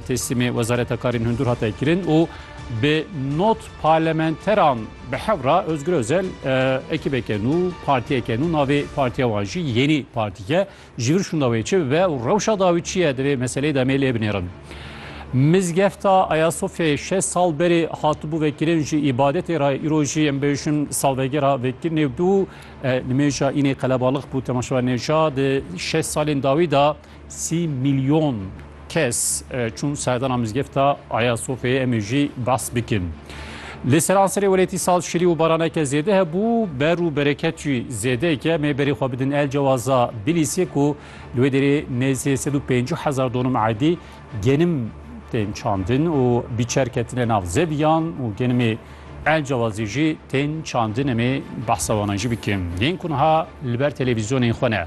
Teslîmê Wezareta Karên Hundir hate kirin û bi not parlamenteran bi hev re Ozgur Ozel ekîbeke nû, partiyeke nû navê partiya wan jî Yenî Partîye ji vir şûnda wê çi bibe û rewşa dawî çi ye divê meseleyê de em ê lê binêrin. Mizgefta Ayasofyayê şeş sal berê hatibû vekirin ji îbadetê re îro jî em bêjin salvegera vekirinê bû. Nimêja înê qelebalix bû temaşevanê ca di şeş salên dawî de Sî mîlyon kes çûn serdana mizgefta Aya Sofyayê em ê jî behs bikin. Li seranserê welêtî saz şirî û baraneke zêde hebû, ber û bereket jî zêdeyek e. Em ê berê xwe bidin El Cewaza Bilîsê ku li wê derê nêzî sed û pêncî hezar donum erdî genim tên çandin û bîçer ketine nav zeviyan û genimê El Cewazî jî tên çandin. Em ê behsa wan jî bikin yên ku niha li ber televîzyonên xwe ne.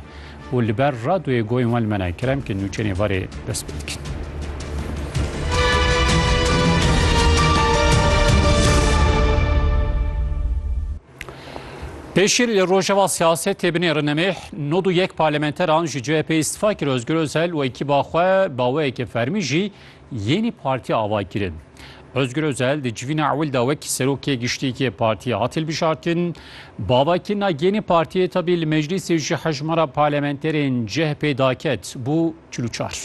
û li ber radoyê goyên wan li me nayê. Kerem ke nûçeyên ê varê dest pê dikin. Pêşî li rojeva siyasetê binê rinemêh nod û yek parlamenteran ji CHP'ê îstifa kir Ozgur Ozel û ekîba xwe baweyeke fermî jî Yenî partî ava kirin. Ozgur Ozel di civîna ewil de wekî Serokê Giştî yê partîyê hat hilbijartin. Bavakirina yenî partîyê tevlî li meclîsê ji hejmara parlamenterên chp daket bû çil û çar.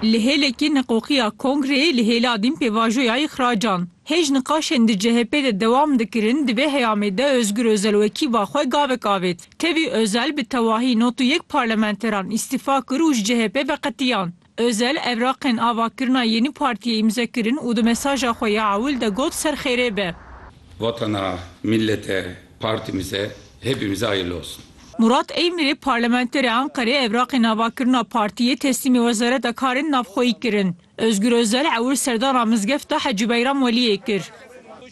Li hêlekî niqoxîya kongreyê li hêla dîn pêvajoya îxracan hêj niqaşên di chp de dewam dikirin, divê heyamê de Ozgur Ozel wekî ba xwe gavek avêt. Tevî Ozel bi tewahî nod û yek parlamenteran îstîfa kir û ji CHP'ê veqetiyan. Ozel evraqên avakirina yênî partiyê îmze kirin û di mesaja xwe ya ewil de got ser xêrê be. Vatana, mîllete, partîmize hepîmize hayirli olsun. Murat Eymirê parlamenterê Anqerê evraqên avakirina partiyê teslîmê Wezareta Karên Navxweyî kirin. Ozgur Ozel ewil serdana mizgefta Hecî Beyram Weliyê kir.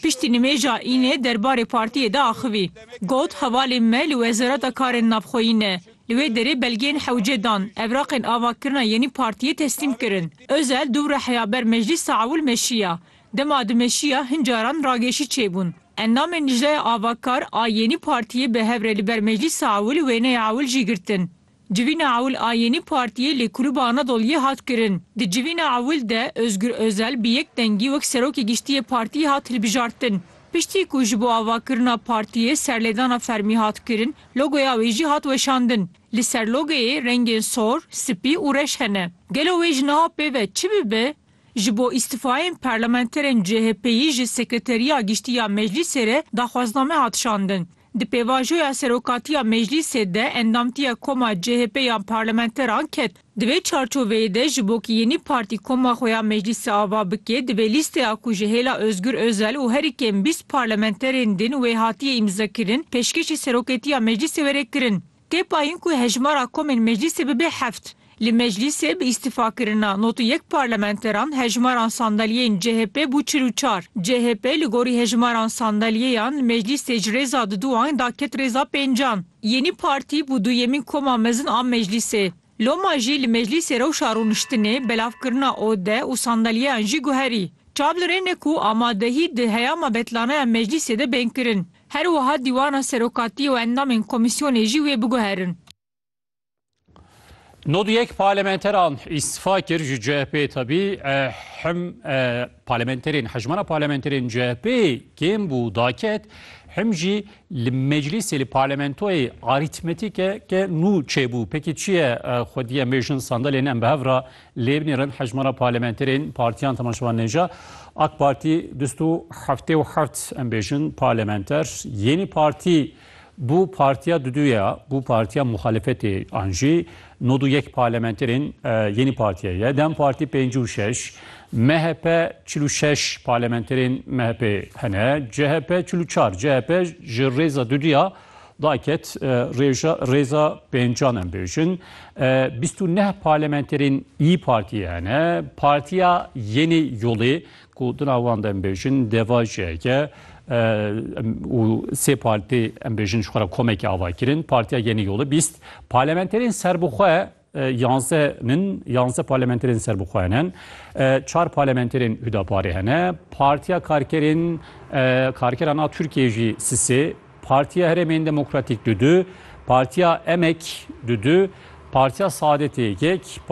Piştî nimêja Înê derbarê partiyê de axivî. Got, Hevalên me li Wezareta Karên Navxweyî ne. Li wê derê belgeyên hewce dan, evraqên avakirina yenî partiyê teslîm kirin. Ozel du reheya ber meclîsa ewil meşiya. Dema dimeşiya hin caran ragêşî çêbûn. Endamên Lijneya Avakar a yenî partiyê bi hev re li ber meclîsa ewil wêneya ewil jî girtin. Civîna ewil a yênî partiyê li Kulûba Anadolyê hat kirin. Di civîna ewil de Ozgur Ozel bi yek dengî wek Serokê Giştî yê partiyê hat hilbijartin. Piştî ku ji bo avakirina partiyê serlêdana fermî hat kirin, logoya wê jî hat weşandin. Li ser logoyê rengên sor, spî û reş hene. Gelo wê ji niha pê ve çi bibe? Ji bo îstîfayên parlamenterên CHPyî ji Sekreteriya Giştî ya Meclîsê re daxwazname hat şandin. Di pêvajoya serokatiya meclîsê de endamtiya koma CHP ya parlamenteran ket. Di vê çarçoveyê de ji bo ku yenî partî koma xwe ya meclîsê ava bike, divê lîsteya ku ji hêla Ozgur Ozel û herî kêm bîst parlamenterên din wê hatiye îmzekirin, pêşkêşî seroketiya meclîsê were kirin. Tê payîn ku hejmara komên meclîsê bibe heft. Li meclîsê bi îstîfakirina nod û yek parlamenteran hejmaran sandalyeyên chp bû çil û çar. Chp li gorî hejmaran sandalyeyan li meclîsê ji rêza diduan da ket rêza pêncan. Yenî Partî bû duyemîn koma mezin a meclîsê. Loma jî li meclîsê rewşa rûniştinê, belavkirina ode û sandalyeyan jî guherî. Çav li rê ne ku amadehî di heyama betlanaya meclîsê de bên kirin. Her wiha dîwana serokatî û endamên komîsyonê jî wê biguherin. Nod yek parlamenteran îstifa kir ji CHP'ê tebî him parlamenterên hejmana parlamenterên CHP'ê kêm bû daket him jî li meclîsê li parlamentoyê arîtmetîke ke nû çêbû pekî çiye xwediye mêjin sandalên em bi hev re Lê binê re hejmara parlementerên partiyan temaşevan nêja. Ak Partî du sed û heftê û heft em bêjin parlementer, Yenî Partî bû partiya dudû ye, bû partiya muxalefetê an jî nod û yek parlementerên Yenî Partîyê ye, Dem Partî pêncî û şeş, MHP çil û şeş parlementerên MHP'ê hene, CHP çil û çar, CHP ji rêza dudû ya Daket, rêja rêza pêncan em bêjin. Bîst û neh parlamenterên Îyi Partiyê hene. Partiya Yenê Yolê ku di nav wan de em bêjin Deva jî heke û sê partî em bêjin ji xwe re komekê ava kirin. Partiya Yenê Yolê bîst parlamenterên serbixwe Yanze nin, yanze parlementerên serbixwe hene. Çar parlementerên Hudaparê hene. Partiya Karkerên Karkeran a Tirkiyeyê jî sisê, Partiya Herêmên Demokratîk du du, Partiya Emek du du, Partiya Saadetê yek,